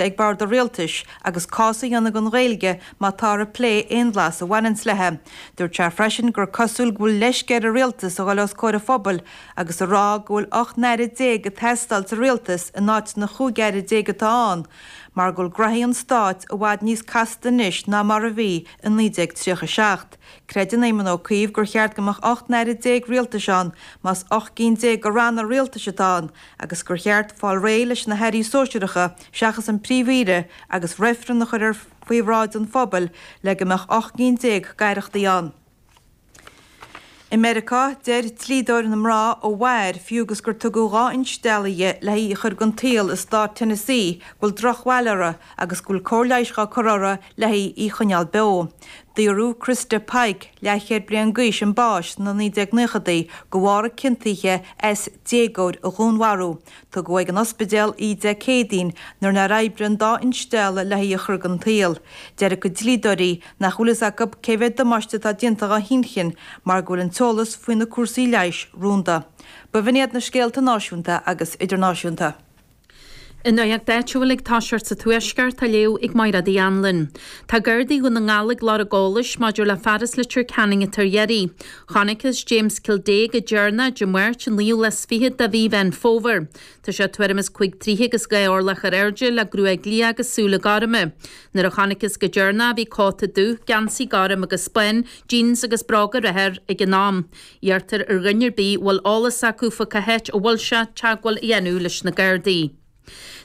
ag bord an rialtais agus cás a dhéanamh don Ghaeilge má táthar ag plé aon bhlas a bhaineanns léi. Dúirt sé freisin gur cosúil go bhfuil leisce ar an rialtas a dhul os comhair an phobail agus a rá go bhfuil 18 n-aire ag teastáil sa rialtas in áit na 15 aire atá ann mar go bhfuil graithí an stáit i bhfad níos casta anois ná mar a bhí i 1937. Creideann Éamon Ó Cuív gur cheart go mbeadh 18 n-aire rialtais ann más 18 gcinn de ranna rialtais atá ann agus gur cheart fáil réidh leis na hairí sóisearacha seachas an Príomh-Aoire agus reifreann a chur ar faoi bhráid an phobail le go mbeadh ocht gcinn déag d'aireachtaí ann. I Meiriceá, deir dlíodóir na mná a mhair, fiú agus gur tugadh dhá instealladh di le haghaidh í a chur den tsaol i stát Tennessee, go bhfuil drochbhail uirthi agus go bhfuil cóir leighis á cur uirthi le haghaidh í a choinneáil beo. Daoradh Christa Pike, leathchéad bliain d'aois chun báis sna 1990idí de bharr a ciontaithe as déagóir a dhúnmharú. Tugadh ag an ospidéal í Dé Céadaoin nuair nár oibrigh an dá instealladh le haghaidh í a chur den tsaol. Deir a cuid dlíodóirí nach bhfuil fhios acu cé mhéad damáiste atá déanta dá hinchinn mar go bhfuil an t-eolas faoi na cúrsaí leighis rúnda. Ba bh'in iad na scéalta náisiúnta agus idirnáisiúnta. An nuacht áitiúil ag toiseacht sa Tuaisceart, á léamh ag Máiréad Uí Anluain. Tá Gardaí Dhún na nGall ag lorg eolais maidir le fear as Leitir Ceanainn atá ar iarraidh. Chonaiceas James Kildea go deireanach, Dé Máirt, an 29ú de mhí Mheán Fómhair. Tá sé tuairim is cuig troithe agus dhá orlach ar airde, le gruaig liath agus súile gorma. Nuair a chonaiceas go deireanach é bhí cóta dubh, geansaí gorm agus bán, jeans, agus bróga reatha air ag an am. Iarrtar ar dhuine ar bith a bhfuil eolas acu fá cá háit a bhfuil sé, teagmháil a dhéanamh leis na Gardaí.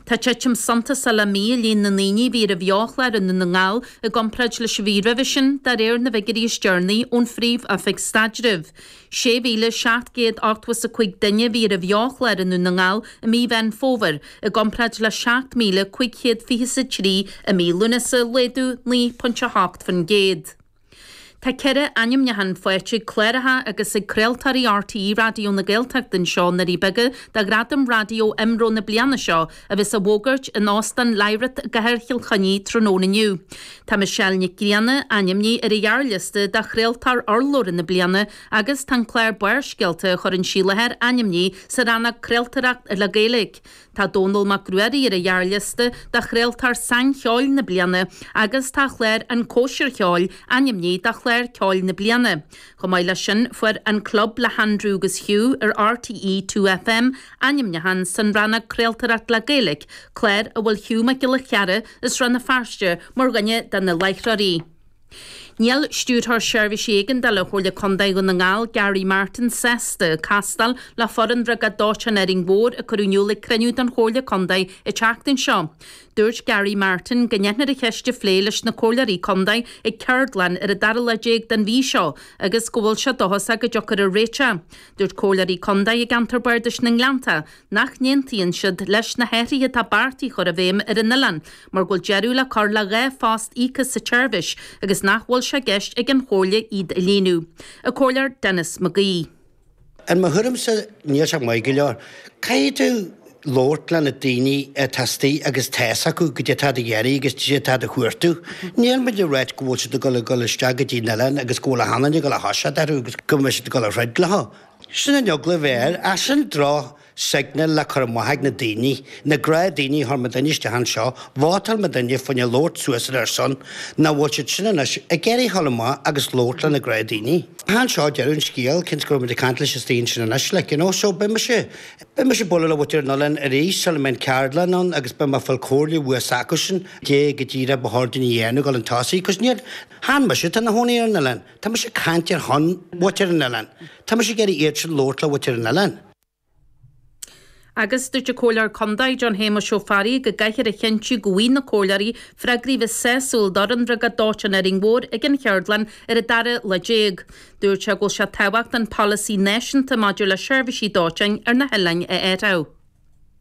Tá titim suntasach le mí i líon na ndaoine a bhí ar an bheo-chlár i nDún na nGall i gcomparáid leis an mhí roimhe sin, de réir na bhfigiúirí is deireanaí ón Phríomh-Oifig Staidrimh. 6,785 duine a bhí ar an bheo-chlár i nDún na nGall i mí Mheán Fómhair, i gcomparáid le 7,523 i mí Lúnasa, laghdú 9.8%. Tá ceithre ainmniúchán faighte ag cláracha agus ag craoltóirí RTÉ Raidió na Gaeltachta anseo i nDoirí Beaga do ghradaim raidió IMRO na bliana seo a bheas á bhfógairt in Óstán Lyrath i gcathair Chill Chainnigh tráthnóna inniu. Tá Michelle Nic Grianna ainmnithe ar an ghearrliosta do chraoltóir urlabhra na bliana agus tá an clár Barrscéalta a chuireann sí i láthair ainmnithe sa rannóg 'Craoltóireacht le Gaeilge'. Tá Dónall Mac Ruairí ar an ghearrliosta do Chraoltóir Saincheoil na Bliana agus tá a chlár An Cóisir Cheoil ainmnithe do Chlár Ceoil na Bliana. Chomh maith leis sin, fuair An Club le hAindriú agus Hugh ar RTÉ 2FM ainmniúchán san rannóg 'Craoltóireacht le Gaeilge', clár a bhfuil Hugh Mac Giolla Chearra as Rann na Feirste mar dhuine de na láithreoirí. Níl Stiúrthóir Seirbhísí Éigeandála Chomhairle Contae Dhún na nGall, Gary Martin, sásta castáil le foireann Bhriogáid Dóiteáin Árainn Mhór a cuireadh in iúl ag cruinniú den Chomhairle Contae an tseachtain seo. Dúirt Gary Martin go ndéanfar an cheist a phlé leis na Comhairleoirí Contae ag ceardlann ar an dara lá déag den mhí seo agus go bhfuil sé dóchasach go dtiocfar ar réiteach. Dúirt Comhairleoirí Contae i gceantar Bardais na nGleannta, nach n-aontaíonn siad leis na hathruithe atá beartaithe a chur i bhfeidhm ar an oileán mar go bhfuil deireadh le cur le dhá phost íoctha sa tseirbhís agus nach bhfuil sé i gceist ag an Chomhairle iad a líonadh. An Comhairleoir Denis McGee. I mo thuairimse, níl sé maith go leor. Caithfidh tú labhairt le na daoine atá astoigh agus tá's acu goidé atá siad a dh'iarraidh agus goidé atá siad a chuartú. Níl muid ag ráit go bhfuil siad ag dul ag dul isteach go dtí an oileán agus go bhfuil achan duine ag dul a thoiseacht orthu agus go mbeidh siad ag dul a throid leo. Sin an eagla a bheadh air. Ach sin droch signal le cur amach ag na daoine, na gnáth daoine a chuir muidinne isteach anseo. Vótáil muidinne fá choinne labhairt suas ar a son. Nach bhfuil siad sin anois ag iarraidh a dhul amach agus labhairt le na gnáth daoine. Chan seo deireadh an scéil, cionn is go raibh muid ag caint leis na daoine sin anois, like, you know. So beidh mise, beidh mise ag bualadh le muintir an oileáin arís sula mbeidh an ceardlann ann agus beidh mé ag fáil comhairle bhua s'acusan, goidé go díreach ba chóir dúinn a dhéanamh, dul chun tosaigh, cos níor, chan mise atá ina chónaí ar an oileán. Tá mise ag caint ar shon mhuintir an oileáin. Tá mise ag iarraidh iadsan labhairt le muintir an oileáin. Agus dúirt an Comhairleoir Contae, John Shéamuis Ó Fearraigh, go gcaithfear a chinntiú go bhfaighidh na comhairleoirí freagraí a bheas sásúil d'fhoireann Bhriogáid Dóiteáin Árainn Mhór ag an Cheardlann ar an dara lá déag. Dúirt sé go bhfuil sé tábhachtach an polasaí náisiúnta maidir le seirbhísí dóiteáin ar na hoileáin a athrú.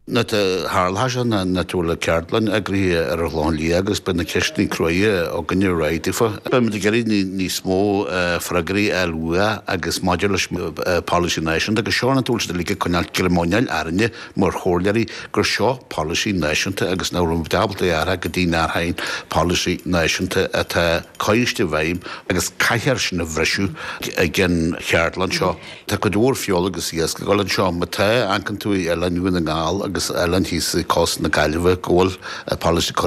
Nuair a tharla seo, ná go bhfuil ceardlann eagraithe ar an Ghleann Liath agus beidh na ceisteanna cruaidhe againne réidh daofa. Beimid ag iarraidh níos mó freagraí a fháil uathu agus maidir leis an bpolasaí náisiúnta go seorantúil sin a ligeadh coinneáil cerimóineáil orainne mar chomhairleoirí gur seo polasaí náisiúnta agus nach raibh muid ábalta é a athrú go dtí nár tháing polasaí náisiúnta atá coiscthe i bhfeidhm agus caithfear sin a bhriseadh ag an cheardlann seo. Tá cuid mhór feola agus iasc ag dul anseo. Má tá, amharcann tú ar Oileáin Dhún na nGall agus oileáin thíos i gcósta na Gaillimhe, go bhfuil an polasaí.